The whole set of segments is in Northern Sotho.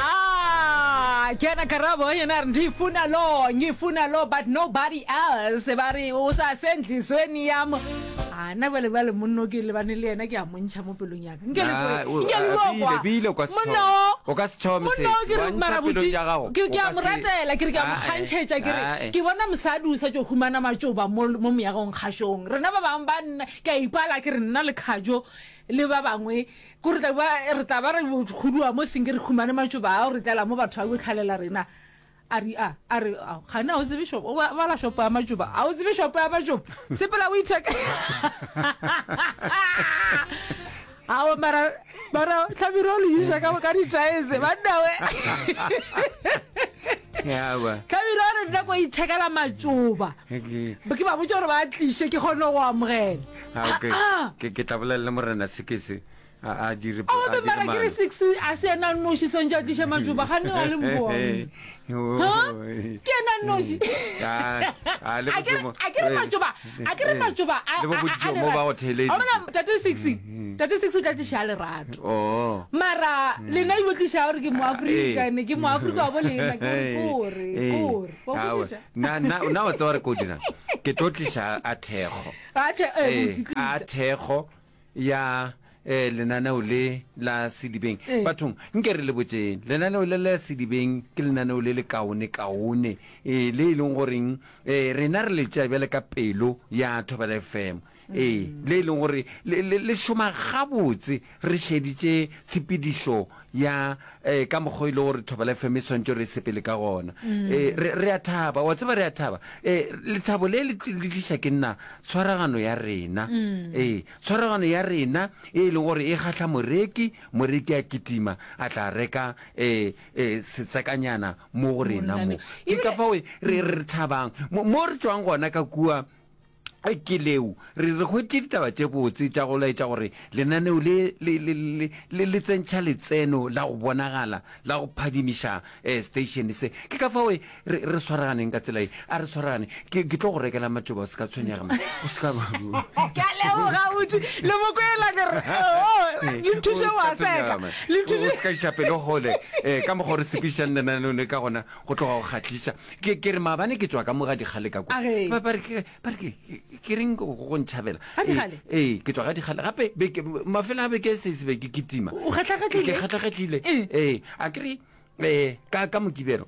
Ah, ke yena karabo yena a re ngifuna lo ngifuna lo but nobody else ba re o sa se ntlisweni yam a nna bale bale monno ke lebane le yena ke a montšha mo pelong yaka nke le Nah, o- nke a- le a- bile- bile o ka se thome. monno O ka se thome monno sesi. ke re Wa ntšha mara pelong botši ya gago. ke re O ke a ka mo se- ratela ke re ke a mo Ah, eh. kgantšhetša ke re Ah, eh. ke bona mosadi o sa tšo humana matšoba mo mo moyagong kgašong rena ba bangwe ba nna ke a ipala ke re nna le kgajo le ba bangwe Ko re tla ba, re tla ba re khuduwa mo senge re khumane matšoba ao re tlela mo batho a yo tlhalela rena. A re, a, a re, ao, gane a o tsebe shopo, o ba, bala shopo ya matšoba, a o tsebe shopo ya matšoba? Sepela o itheke. Ao, mara, mara, tlhamiro o le iša ka, ka ditaese, banna we. Yaba. Tlhamiro a re nna ko ithekela matšoba. Ke ba botša gore ba tliše ke kgone go amogela. Ah, okay. Ah, ah. ke ke tla bolela le morena sekese a a dire a ore dire mara ke re mano. six a se ena noši swantse a tliše matšoba ga ne a le mboone Oh, Ha? eh. ke ena noši Ah, ah, le A ke re- bojomo- a ke re eh, matšoba a ke re eh, matšoba a- le bo a- a- a bojomo lerato. ba go theletše. A bona tate six tate six o tla tliša a lerato Oh. mara lena ilo tliša gore ke moaforika Eh. ne ke moaforika wa bo lena ke gore kore Eh. kore wa Aowa. kwešiša Na- na na wa tseba gore ke o dirang ke tlo tlisa a thekgo ee, a thekgo ya eh, lenaneo le la sedibeng bathong nke re le botseng lenaneo le la sedibeng ke lenaneo le le kaone kaone eh, le e leng goreng eh, rena re le tšea bjale ka pelo ya thobela fm ee le e leng gore le- le le šoma gabotse Re šeditše tshepedišo ya eh, ka mokgwa e le gore Thobela FM e swantšo re sepele ka gona. Eh, re, re a thaba, wa tseba re a thaba. Eh, lethabo le le tli- le tliša ke nna tshwaragano ya rena. Eh, tshwaragano ya rena e le gore e kgahla moreki, moreki a kitima a tla reka eh, eh, setsekanyana mo go rena mo. Monna me. Ke ka Ebile- fao re re thabang. Mo, mo re tšwang gona ka kua Ke leo re re hwetše ditaba tše botse tša go laetša gore lenaneo le le, le, le, le, le tsentšha letseno la go bonagala la go phadimiša eh, station se. Ke ka fao e, re, re swaraganeng ka tsela ye. A re swaraganeng. Ke, ke tlo go rekela matšoba, o se ka tshwenyega, man. O se ka. Ke a leboga, Utu. Le mo kwela ke re, oh, le O nthuše se go ka a tshwenyega, seka. man. Le O o se nthuše. ka iša pelo kgole eh, ka mokgwa o re sekišang lenaneo le ka gona go tloga go kgahliša. Ke, ke re maabane ke tšwa ka mo ga dikgale ka kwa. A ge. Ba, ba re, ke, ba re ke, ke reng go, go ntšhabela. Ga dikgale? Ee, ee, ke tšwa ga dikgale. Gape, beke, mafelo a beke se, se be ke kitima. O kgatlha-kgatlhile? Ke kgatlha-kgatlhile. Ee. Ee, a ke re, ee, ka, ka Mokibelo,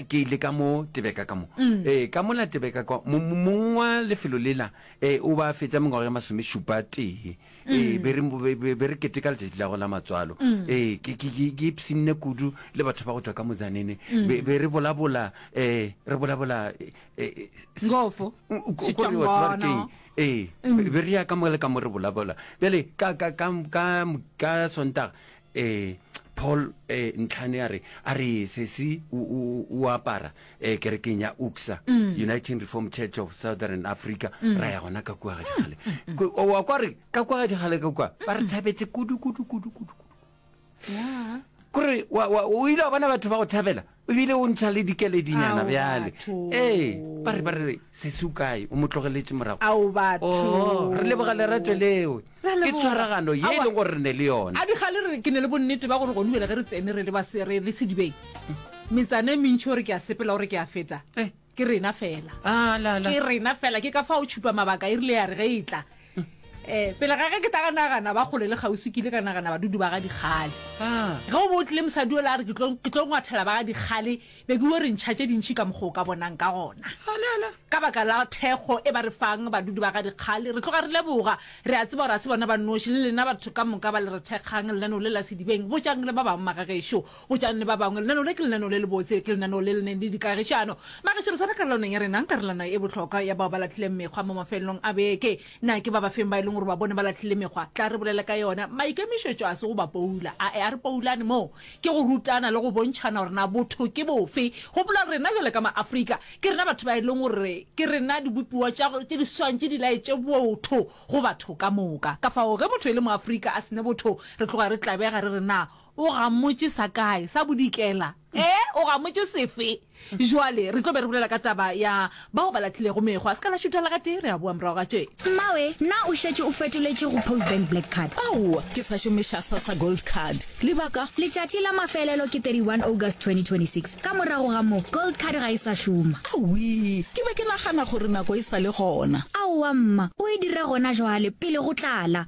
ke ile ka mo Tebeka ka mo. Ee, ka mola Tebeka kwa, mo, mo, mong wa lefelo lela, ee, o ba a fetša mengwaga ye masomešupa tee. ee be re mo- be- be- be re keteka letšatši la go la matswalo ee ke- ke ke- ke ipsinne kudu le batho ba go tšwa ka motsanene be be re bolabola um re bolabola eh, eh, s- Ngofo, Mm, ko- ko re Shitongono. wa tseba re keng? ee be be re ya ka mo le ka mo re bolabola bjale ka ka- ka- ka- ka sontaga Ee, Paul eh, Ntlhane a re, a re sesi o, o, o apara eh, kerekeng ya UCSA, Uniting Reformed Church of Southern Africa, ra ya gona ka kua ga dikgale. Ko- o- wa kwa re ka kua ga dikgale ka kua ba re thabetse kudu kudu kudu kudu kudu. kore wa- wa- o ile wa bona batho ba go thabela o bile o ntšha le dikeledinyana bjale ee ba re ba re se se ukae o mo tlogeletše morago ao batho oh, re leboga lerato leo ke tshwaragano ye e leng gore re ne le yone a diga le re ke ne le bonnete ba gore gone bjale ge re tsene re le ba sere le sedibeng metsana e mentšhi gore ke a sepela gore ke a feta eh. ke rena fela Ah, la, la. ke rena fela ke ka fa o tšhupa mabaka e rile ya re ge e tla um pele ga ge ke tla ka nagana ba kgole le kgauswi ke ile ka nagana badudu ba ga dikgale Ah. ge o bo o tlile mosadi o la re ke tlo ke tlo ngwathela ba ga dikgale be ke o re ntšha tše dintšhi ka mokgwa o ka bonang ka gona Ah, la, la. ka baka la thekgo e ba re fang badudu ba ga dikgale re tloga re leboga re a tseba gore a se bona ba noši le lena batho ka moka ba le re thekgang lenaneo le la sedibeng botšang le ba bangwe magagešo Botšanne ba bangwe, lenaneo le ke lenaneo le lebotse, ke lenaneo le le neng le dikagišano. Mageširesane karolwaneng ya rena, karolwana e bohlokwa ya bao ba lahlileng mekgwa mo mafelelong a beke. Na ke ba bafeng ba e leng gore ba bone ba lahlile mekgwa? Tla re bolele ka yona. Maikemišetšo a se go ba poula. A-e, a re poulane moo. Ke go rutana le go bontšhana gore na botho ke bofe. Gopola, rena bjale ka ma-Afrika, ke rena batho ba e leng gore ke rena dibopiwa tša tše di swantše di laetše botho go batho ka moka. Kafao ge motho e le mo-Afrika a se ne botho, re tloga re tlabega re re na O gamotše sa kae? Sa bodikela? Ee, o gamotše sefe? Bjale, re tlo be re bolela ka taba ya bao ba lahlilego mekgwa. Se ka la šutela gatee, re a boa morago ga tše. Mmawe, na o šetše o fetoletše go Postbank Black Card? Aowa, ke sa šomiša Sassa Gold Card. Lebaka? Letšatši la mafelelo ke 31 August 2026. Ka morago ga moo, Gold Card ga e sa šoma. Awii, ke be ke nagana gore nako e sa le gona. Aowa, mma. O e dira gona bjale, pele go tlala.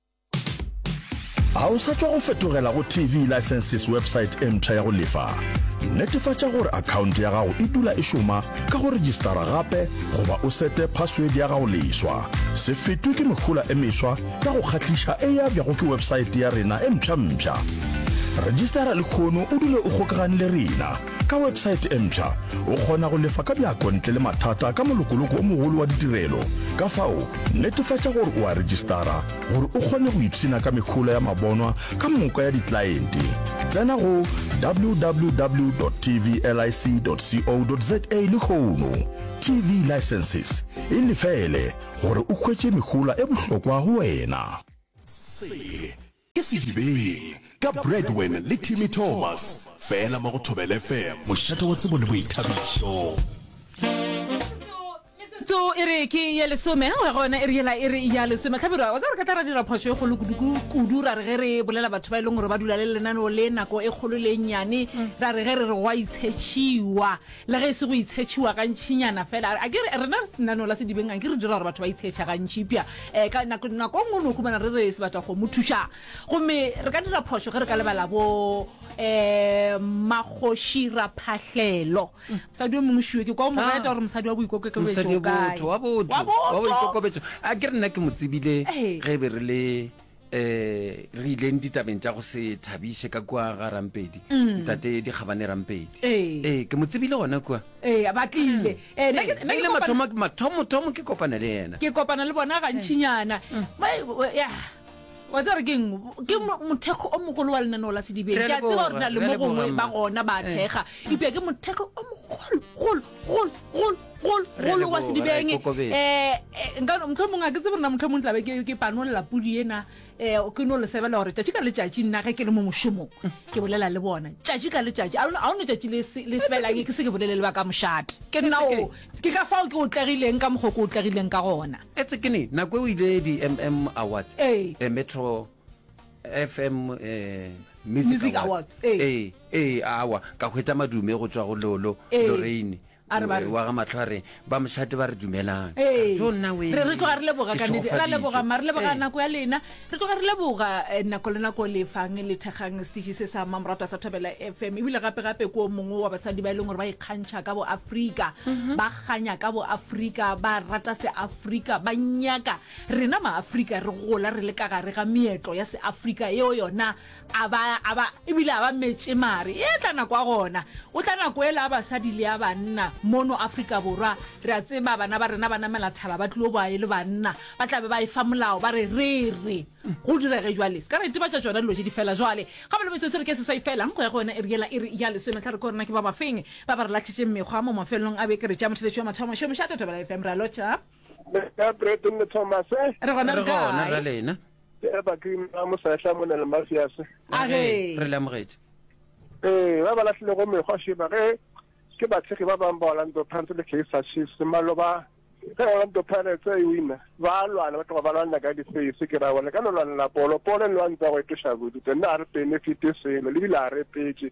a o sa tšwa go fetogela go tv licenses website e mpsha ya go lefa netefatša gore akhaonto ya gago e dula e šoma ka go registara gape goba o sete password ya gago leswa se fetwe ke mehola e meswa ka go kgahliša e ya bjago ke website ya rena e mpšhampšha registara lekgono o dule o kgokagane le rena Ka website e mpsha, o kgona go lefa ka bjako ntle le mathata ka molokoloko o mogolo wa ditirelo. Ka fao, netefatša gore o a rejistara gore o kgone go ipshina ka mehola ya mabonwa ka moka ya diklaente. Tsena go www.tvlic.co.za lehono. TV Licenses e lefele gore o hwetše mehola e bohlokwa go wena. Se. Ke Sedibeng, ka Bradwin le Timmy Thomas, fela mo go Thobela FM. Mošate wa tsebo le boithabišo. Metsotso e re ke ye lesome go ya go yona e re yela e re ya lesome tlhabirwa wa tsa re ka tla ra dira phoso e golo kudu ra re ge re bolela batho ba e leng gore ba dula le lenaneo le nako e kgolo le e nnyane ra re ge re re go a itshetšhiwa Le ge e se go itshetšhiwa gantšinyana fela, akere rena lenaneo la Sedibeng anke re dira gore batho ba itshetšhe gantši eupša um ka nako nako e nngwe o no humana re re se batla go mo thuša. Gomme re ka dira phošo ge re ka lebala bo um Makgoši Raphahlelo, mosadi yo mongwe šiwe ke kwa o mo reta gore mosadi wa boikokekebetšo o Mosadi wa kae. botho, wa botho, Wa wa botho. boikokobetso. Akere nna ke mo tsebile Ee. ge e be re le um re ileng ditabeng tša go se thabiše ka kua ga rampedi mm. ntate dikgabane rampedi ee eh. eh, ke mo tsebile gona kua ee ba tlile mm. mathomothomo ke kopana le ena ke kopana le bona gantšhinyana mm. wa tsere ke eng ke mothekgo o mogolo wa lenaneo la sedibeng ke a tseba gore na le mo gongwe ba gona ba thekga ipea ke mothekgo o mogologolo gol gol gol golo wa sedibeng um motlho mongwe a ke tsebe rena motlho mongwe tlabe ke panolela pudi ena um ke no le sebela gore tšatši ka letšatši nna ge ke le mo mošomong ke bolela le bona tšatši ka letšatši a o ne tšatši le felang ke se ke bolele le ba ka mošate ke nna o ke ka fao ke otlegileng ka mokgwa ke otlegileng ka gona etse ke ne nako e o ile di-mm awards ee metro FM eh, Music Music Award. Award, ee. Ee, ee, awa ka hwetša madume go tswa go lolo Ee. loreine A re ba re- wa ga matlho a re ba mošate ba re dumelang Ee. So nna we- re re tloga re leboga ke ka nnete ra šogofaditšwe. leboga mare re leboga Ee. nako ya lena re tloga re leboga eh, nako le nako le fang le thekgang setiši se sa mamoratwa sa thobela fm ebile gape-gape ko mongwe wa basadi ba e leng gore ba ikgantšha ka boafrika Mhm. ba kganya ka boafrika ba rata seafrika ba nyaka Rena Maafrika re gola re le ka gare ga meetlo ya Seafrika yeo yona a ba, a ba, e bile a ba metše mare e tla nako a gona o tla nako e la a basadi le a banna mono Afrika Borwa re a tseba bana ba rena ba namela thaba ba tlilo boa e le banna ba tla be ba e fa molao ba re re re go direge jwale se ka re itebatša tšona dilo tše di fela jwale ga ba le metsotso re ke seswai fela nko ya go yona e re yela e re ya lesome tla re ko rena ke ba bafeng ba ba re lahlitšeng mekgwa mo mafelelong a beke re tšea motheletši wa mathomo šomiša Totobela FM ra lotšha Beka Brett le Thomas. Eh? Re gona re gona re lena. Ke ba ke ma mo sa hla mona le mafias. A re re le amogetse. Eh, ba bala hle go me go she ba ge ke ba tshege ba bang ba Orlando Pirates le Kaizer Chiefs maloba. Ke Orlando Pirates e wina. Ba lwana ba tloga ba lwana ka difeisi ke ra bona ka lwana la polo. Polo le lwana go e ke shabu. Tena re benefit selo le bila re petse.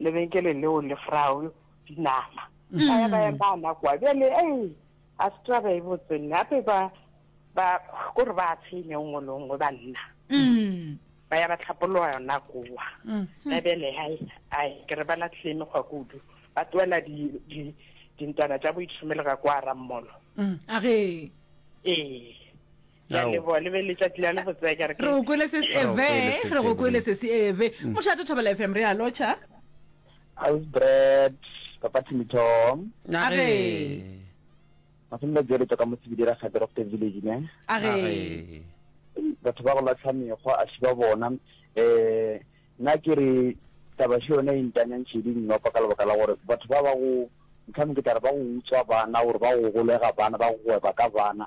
lebenkele leo le frao dinama mm. a ya ba yang ba nakwa bjale ei a se taba e botse nna ape ba ba ko re ba tshenye nngwe le nngwe ba nna mm. ba ya ba tlhapologa yona kowa mm. na bjale hai ai ke re ba latlhile mekgwa kudu ba tloela dintwana tša boitshomele ga kwa rammolo age ee re go kwele sesi eve re go kwele sesi eve mm. mošate thobela fm re a lotšha ausbred papa timithong age mafelelo jere toka mo sebidira ga director village ne age batho ba go latlha mekgwa a šiba bona um eh, na ke re tabašo yone e ntanyang šedi nnopa ka lebaka la gore batho ba ba go ntlhame ke tare ba go utswa bana gore ba go golega bana ba go gweba ka bana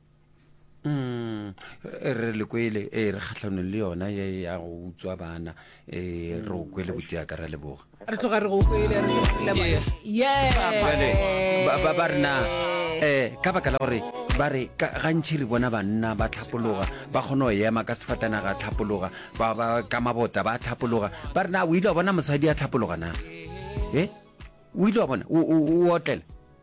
Mm, re le kwele e eh, re kgatlhanong le yona ye ya go utswa bana e re o kwele botiaka ra leboga re tloga re go kwele ba rena um ka baka la gore ba re gantšhi re bona banna ba tlhapologa ba kgone go ema ka sefatana ga tlhapologa ka mabota ba tlhapologa ba rena o ile wa bona mosadi ya tlhapologa na e o ile wa bona o otlela